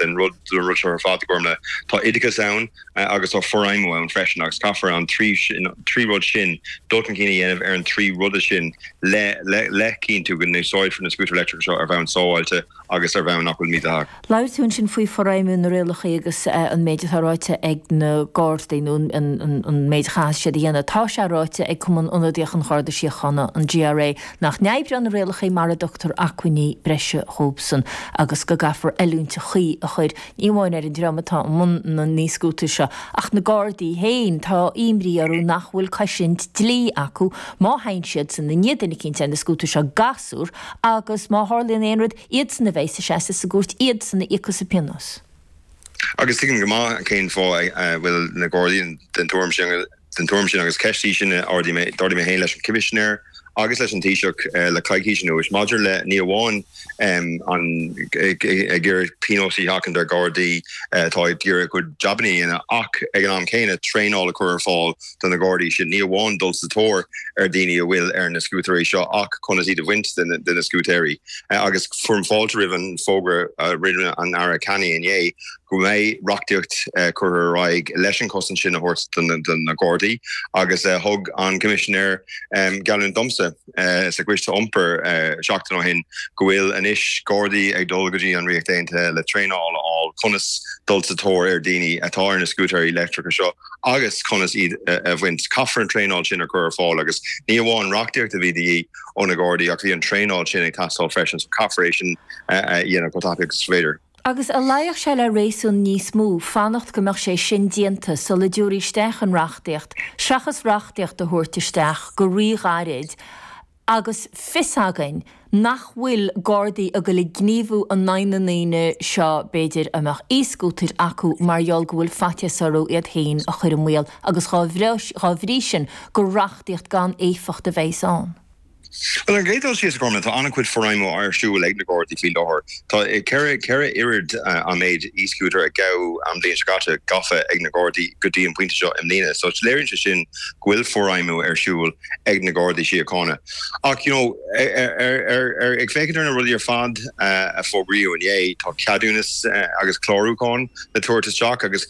den rud seo ar fad, a Ghormfhlaith. Tá oideachas ann agus tá forfheidhmiú ann freisin agus caithfear an trí rud sin, dul chun cinn a dhéanamh ar an trí ruda sin le le cinntiú go n-úsáidfear na scútair leictreacha seo ar bhonn sábháilte agus ar bhonn nach bhfuil mídhleathach. Labhair tú ansin faoi forfheidhmiú na rialacha agus an méid atá ráite ag na Gardaí nó an méid a chaithfidh siad a dhéanamh. Tá sé ráite ag Cumann Ionadaíoch an Gharda Síochána, an GRA, nach n-oibreodh na rialacha mara dtugtar acmhainní breise dhóibhsan agus go gcaithfear oiliúint chuí a chur, ní amháin ar an dream atá i mbun na n-íoscútar seo, ach na Gardaí féin. Tá imní orthu nach bhfuil cosaint dlí acu má theigheann siadsan i ndiaidh duine eicínt ar na scútair seo, gasúr, agus má tharlaíonn aon rud, iadsan a bheidh ag seasamh sa gcúirt, iadsan a íocfas an pionós. Agus tuigim go maith cén fáth a bhfuil na Gardaí den tuairim sin. den tuairim sin agus ceist í sin a d'ardaigh mé féin leis an Choimisinéir agus leis an Taoiseach le coicís anuas maidir le ní amháin an ag iarraidh pionós a sheachaint ar Ghardaí atá ag iarraidh a gcuid jabanna a dhéanamh ach ag an am céanna traenáil a chur ar fáil do na Gardaí sin, ní amháin dul sa tóir ar dhaoine a bhfuil ar na scútaeirí seo ach conas iad a bhaint de na scútaeirí agus fearaim fáilte roimh an bhfógra a rinne an tAire Canney inné. go mbeidh reachtaíocht curtha ar aghaidh leis an chosaint sin a thabhairt do na Gardaí agus thug an Coimisinéir geallúint domsa sa gCoiste Iompair seachtain ó shin go bhfuil anois Gardaí ag dul go dtí an Ríocht Aontaithe le traenáil a fháil conas dul sa tóir ar dhaoine atá ar na scútaeirí leictreacha seo agus conas iad a bhaint. Caithfear an traenáil sin a chur ar fáil agus ní amháin reachtaíocht a bhí de dhíth ó na Gardaí ach bhí an traenáil sin ag teastáil freisin so caithfear é sin a dhéanamh chomh tapaidh agus is féidir. Agus an luífeadh sé le réasún níos mó fanacht go mbeadh sé sin déanta sula dtabharfaí isteach an reachtaíocht seachas reachtaíocht a thabhairt isteach go rí-ghairid agus fios againn nach bhfuil Gardaí ag dul ag gníomhú in aghaidh na ndaoine seo b'fhéidir a mbeadh e-scútair acu mar gheall go bhfuil faitíos orthu iad féin a chur i mbaol agus dá bhrí sin gur reachtaíocht gan éifeacht a bheidh ann. Bhuel, an chéad dul síos, a Ghormfhlaith, tá an-chuid forfheidhmiú ar siúl ag na Gardaí faoi láthair. Tá ceithre oiread an méid e-scooter a gabhadh an bhliain seo caite gafa ag na Gardaí go dtí an pointe seo i mbliana. So léiríonn sé sin go bhfuil forfheidhmiú ar siúl ag na Gardaí Síochána. Ach you know, ar ag féachaint ar na rudaí ar fad a fógraíodh inné, tá ceadúnas agus clárúchán le tabhairt isteach agus.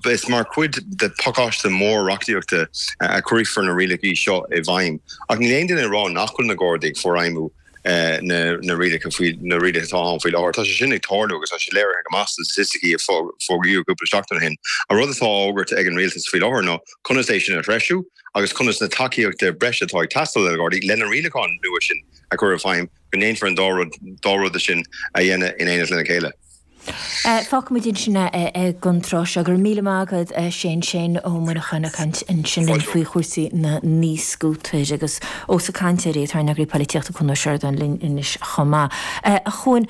Is mar chuid de phacáiste mór reachtaíochta a chuirfear na rialacha seo i bhfeidhm ach níl aon duine ag rá nach bhfuil na Gardaí ag forfheidhmiú na rialacha atá ann faoi láthair. Tá sé sin ag tarlú agus tá sé léirithe go maith sna staitisticí a fógraíodh cúpla seachtain ó shin. An rud atá á fhógairt ag an rialtas faoi láthair ná conas é sin a threisiú agus conas na tacaíochta breise atá ag teastáil ó na Gardaí le na rialacháin nua sin a chur i bhfeidhm, go ndéanfar an dá rud sin a dhéanamh in éineacht lena chéile. Fágfaimid ansin é ag an tráth seo. Go raibh míle maith agat Shane, Shane Ó Muineacháin ag caint ansin linn faoi chúrsaí na n-e-scooter agus ós ag caint air é, tá ár n-eagraí poilitíochta Cúán Ó Seireadáin linn anois chomh maith. A Chúáin,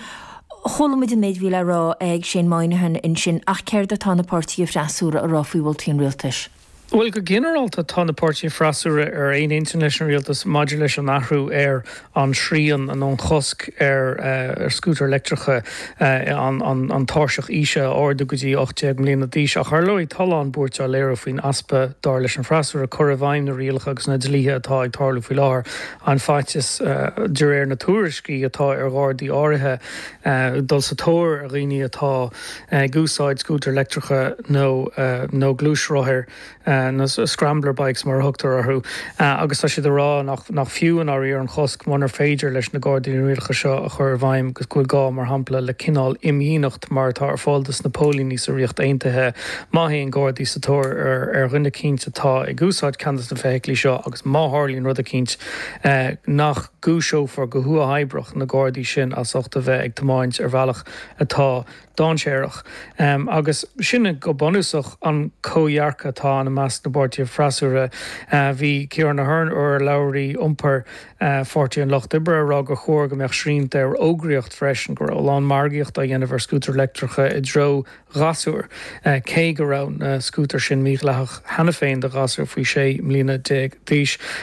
chuala muid an méid a bhí le rá ag Shane Moynihan ansin ach céard atá na páirtithe freasúra a rá faoi mholtaí an rialtais? Bhuel, go ginearálta tá na páirtithe freasúra ar aon intinn leis an rialtas maidir leis an athrú ar an srian nó an chosc ar scútair leictreacha an tairseach aoise a ardú go dtí 18 mbliana d'aois. Ach ar ndóigh tá a lán buairt á léiriú faoin easpa, dar leis an bhfreasúra, cur i bhfeidhm na rialacha agus na dlíthe atá ag tarlú faoi láthair. An faitíos, de réir na tuairiscí, atá ar Ghardaí áirithe dul sa tóir ar dhaoine atá. ag úsáid scútair leictreacha nó nó gluaisrothair, na scrambler bikes mar a thugtar orthu, agus tá siad ag rá nach nach fiú i ndáiríre an chosc munar féidir leis na Gardaí na rialacha seo a chur i bhfeidhm agus go bhfuil gá, mar shampla, le cineál imdhíonacht mar atá ar fáil dos na póilíní sa Ríocht Aontaithe má théann Gardaí sa tóir ar ar dhuine eicínt atá ag úsáid ceann dos na feithiclí seo agus má tharlaíonn rud eicínt nach gcúiseofar go huathoibreach na Gardaí sin as ucht a bheith ag tiomáint ar bhealach atá dáinséarach. Agus sin go bunúsach an comhdhearcadh atá ann i measc na bpáirtithe freasúra. Bhí Ciarán Ahern, urlabhraí iompair Pháirtí an Lucht Oibre, ag rá gur chóir go mbeadh srianta ar fhógraíocht freisin, go raibh a lán margaíocht á dhéanamh ar scútair leictreacha i dtreo ghasúir, cé go raibh na scútair sin mídhleathach cheana féin do ghasúir faoi 16 mbliana d'aois.